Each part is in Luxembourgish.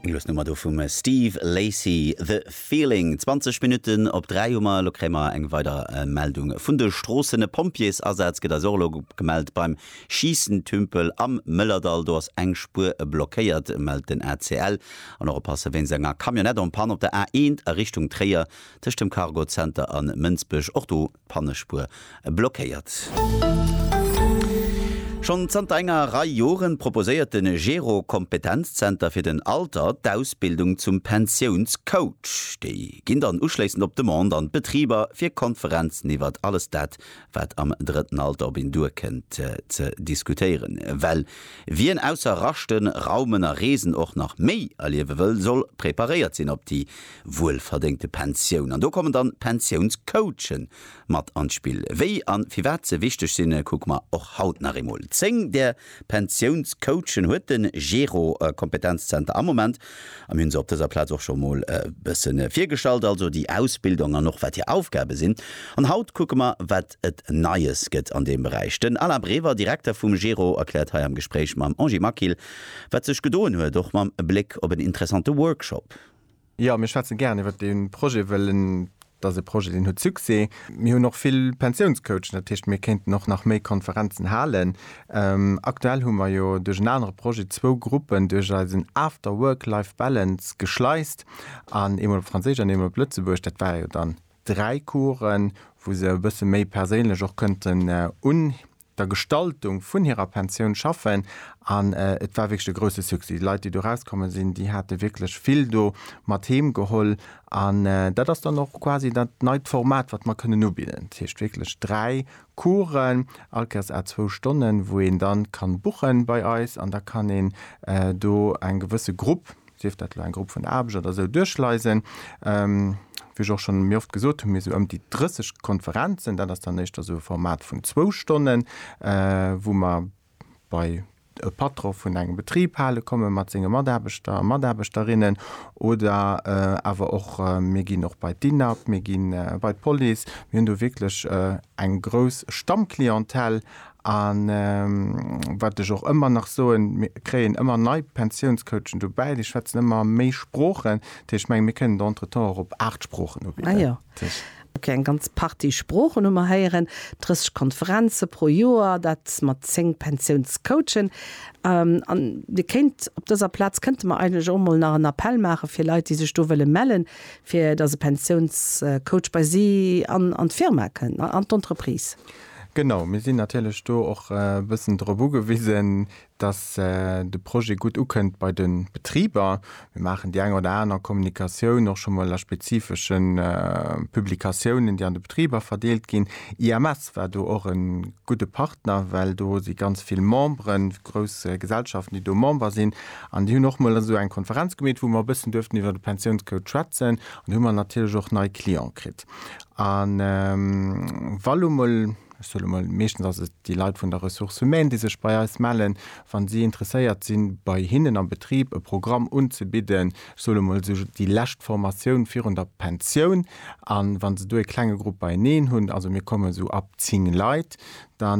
Eng lues Nummer do vum Steve Lacy, The Feeling. 20 Minutten op 3 hu mer, elo kréie mer eng weider Meldung vun de Stroossen. E Pompjeesasaz gëtt eis och elo gemellt beim Schiessentümpel am Mëllerdall. Do ass eng Spuer blockéiert, mellt den ACL. An och oppasse wéinst enger Camionnette en panne op der A1 a Richtung Tréier, tëscht dem Cargo Center a Mënsbech. Och do Pannespuer blockéiert. Schonn zanter enger Rei Joren proposéiert de Gero Kompetenzzenter fir den Alter d'Ausbildung zum Pensiounscoach. Déi ginn dann uschléissend op Demande an d'Betriber fir Konferenzen iwwert alles dat, wat am drëtten Alter op een duerkënnt, ze diskutéieren. Well wien ausser raschten, raumen a reesen och nach méi erliewe wëll, soll preparéiert sinn op déi wuelverdéngte Pensioun. An do kommen dann d'Pensiounscoache mat an d'Spill. Wéi an firwat se wichteg sinn, kucke mer och haut nach eemol. 10 där Pensiounscoachen huet den Gero Kompetenzzenter am Moment a mir hunn se op dëser Plaz och scho mol e bësse virgestallt, also déi Ausbildung an och wat hir Aufgabe sinn. An haut kucke mer wat et Neies gëtt an deem Beräich. Den Alain Brever, Direkter vum Gero, erkläert hei am Gespréich mam Angie Maquil wat sech gedoen huet, och mam Bléck op en interessante Workshop. Jo, mir schwätzen gären iwwert dee Projet, well en ass e Projet, deen huet Succès. Mir hunn och vill Pensiounscoachen, dat heescht, mir kéinten och nach méi Konferenzen halen. Aktuell hu mer jo duerch en anere Projet zwou Gruppen duerch eisen After Work Life Balance geschleist, an eemol op Franséisch an eemol op Lëtzebuergesch. Dat ware jo dann dräi Coursen, wou se e bësse méi perséinlech och kënnten un. der Gestaltung vun hirer Pensioun schaffen an et war wierklech e grousse Succès. Déi Leit, déi do erauskommen sinn, déi hate wierklech vill do mat heem geholl an dat ass dann och quasi dat neit Format, wat mer kënnen ubidden. Dat heescht wierklech dräi Coursen, all Kéiers à zwou Stonnen, wou een da ka buche bei eis an da kann een do eng gewësse Grupp sief dat elo eng Grupp vun Aarbecht oder esou, duerchleisen. Wéi ech och schonn méi oft gesot hunn, mir esou ëm déi 30 Konferenzen, dat ass dann éischter esou e Format vun zwou Stonnen, wou mer bei e Patron vun engem Betrib hale komme mat senge Mataarbechter a Mataarbechterinnen oder awer och mir ginn och bei d'INAB, mir gi bei d'Police, mir hunn do wierklech eng grouss Stammclientèle A wat ech och ëmmer nach soen, mir kréien ëmmer nei Pensiounscoachen dobäi, déi schwätzen ëmmer méi Sproochen. Dat heescht, ech mengen, mir kënnen der entretemps och op aacht Sproochen ubidden. Ok, eng ganz Partie Sproochen hu mer héieren, 30 Konferenze pro Joer, dat mat zéng Pensiounscoachen. A Dir kéint op dëser Plaz kënnte mer eigentlech och emol nach en Appell maache fir Leit, déi sech do wëlle mellen, fir datt e Pensiounscoach bei si an d'Firma kënnt, an d'Entreprise. Genau, mir sinn natierlech do och e bëssen drop ugewisen, dass de Projet gutt ukënnt bei de Betriber. Mir maachen déi eng oder aner Kommunikatioun och scho mol a spezifesche Publikatiounen, déi an de Betriber verdeelt ginn. IMS war do och e gudde Partner, well do si ganz vill Memberen, grouss Gesellschaften, déi do Member sinn. An déi hunn och mol esou eng Konferenz gemeet, wou mer e bëssen duerften iwwer de Pensiounscode schwätzen. An do hu mer natierlech och nei Cliente kritt. A wa lo mol, ech soe lo mol, meeschtens ass et déi Leit vun der Ressources humaines, déi sech bei eis mellen, wa si interesséiert sinn, bei hinnen am Betrib e Programm unzebidden, ech soe lo mol esou déi lescht Formatioun virun der Pensioun, a wa se do e klenge Grupp beieneen hunn, also mir kommen esou ab zéng Leit, da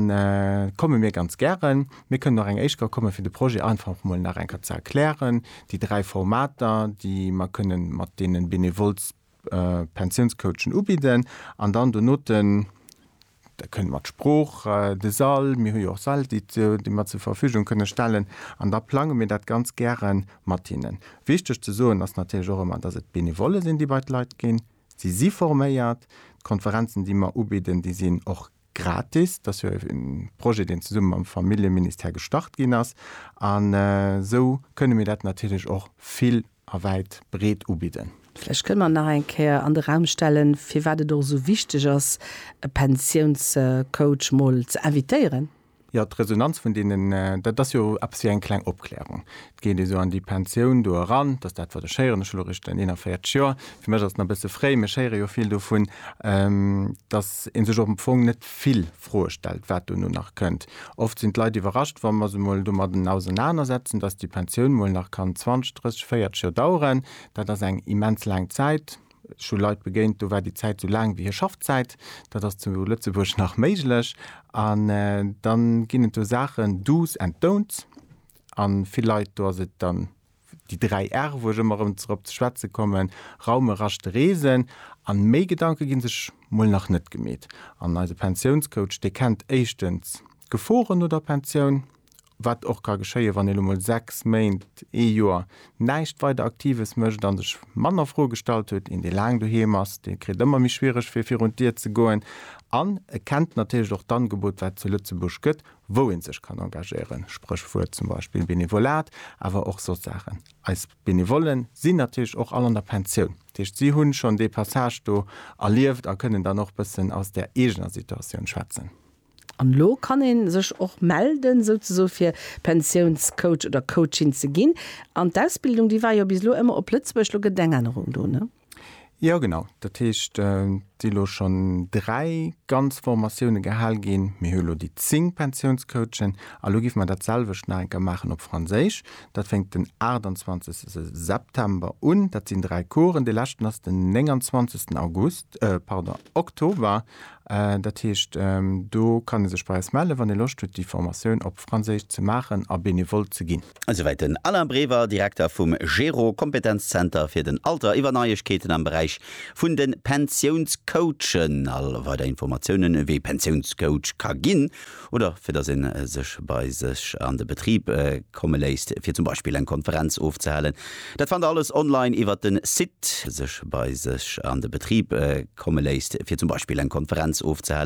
komme mir ganz gären. Mir kënnen och eng éischt Kéier kommen, fir de Projet einfach mol nach eng Kéier ze erklären, déi dräi Formater, déi mer kënnen mat deene Benevole, Pensiounscoachen ubidden an dann donoten da kënnt mat Sprooch de Sall, mir hu jo och Säll déi mer zur Verfügung kënne stellen an da plange mir dat ganz gäre mat hinnen. Wichteg ze soen ass natierlech och ëmmer, dass et Benevolle sinn, déi bei d'Leit ginn. Si si forméiert. D'Konferenzen, déi mer ubidden, déi sinn och gratis. Dat ass jo e Projet, deen zesumme mam Familljeministère gestart ginn ass an esou kënne mir dat natierlech och vill a wäit breet ubidden. Vläicht kënne mer nach eng Kéier an de Raum stellen, firwat et och esou wichteg ass, e Pensiounscoach mol ze invitéieren. Jo, d'Resonanz vun deenen, dat ass jo eppes wéi eng kleng Opklärung. Et geet ee sou an déi Pensioun do eran, dass dat, wat ech héieren, ech hu elo erech den 41 Joer, fir mech ass et nach e bësse fréi, mee ech héiere jo vill dovun, dass ee sech am Fong net vill Froe stellt, wat dono nach kënnt. Oft sinn d'Leit iwwerrascht, wa mer se mol domadden ausernanersetzen, dass déi Pensioun mol nach kann 20, 30, 40 Joer daueren. Dat ass eng immens laang Zäit. Ech hu Leit begéint, do war déi Zäit esou laang wéi hir Schaffzäit. Dat ass zu Lëtzebuerg nach méiglech. An dann ginn et do Saachen, Do's and don'ts, a vill Leit, do ass et dann, déi dräi R'e wou ech ëmmer erëm drop ze schwätze kommen, raumen, raschten, reesen, a méi Gedanke gi sech mol nach net gemeet. An eise Pensiounscoach, dee kennt éischtens d'Geforen no der Pensioun, wat och ka geschéien, wann ee lo mol sechs Méint, ee Joer näischt weider Aktives mécht a sech manner Froe gestallt huet. Een dee laang doheem ass, dee kritt ëmmer méi schwiereg fir virun d'Dier ze goen an e kennt natierlech och d'Angebot wat zu Lëtzebuerg gëtt, wou ee sech kann engagéieren, Spréchwuert zum Beispill Benevolat, awer och soss Saachen. Eis Benevolle sinn natierlech och all an der Pensioun, dat heescht si hu schonn dee Passage do erlieft a kënnen dann och bëssen aus där eegener Situatioun schwätzen. An elo kann ee sech och melden, souzesoe fir Pensiounscoach oder coachin ze ginn. An d'Ausbildung, déi war jo bis elo ëmmer op Lëtzebuerg, elo gëtt et eng Ännerung do, ne? Jo genau, dat heescht et si elo schonn dräi ganz Formatioune gehal ginn. Mir hu elo déi zéng Pensiounscoachen a elo géife mer dat selwecht nach eng Kéier maachen op Franséisch. Dat fänkt den 28 September un, dat sinn dräi Coursen, dee leschten ass den 29 August, pardon, Oktober. Dat heescht do kann ee sech bei eis mellen, wann ee Loscht huet déi Formatioun op Franséisch ze maachen a benevole ze ginn. Esouwäit den Alain Brever, Direkter vum GERO, Kompetenzzenter fir den Alter, iwwer Neiegkeeten am Beräich vun de Pensiounscoachen. All weider Informatiounen, wee Pensiounscoach ka ginn oder fir datt ee sech bei sech an de Betrib komme léisst, fir zum Beispill eng Konferenz ofzehalen, dat fannt der alles online iwwer den Site. Sech bei sech an de Betrib komme léisst, fir zum Beispill eng Konferenz ofzehalen.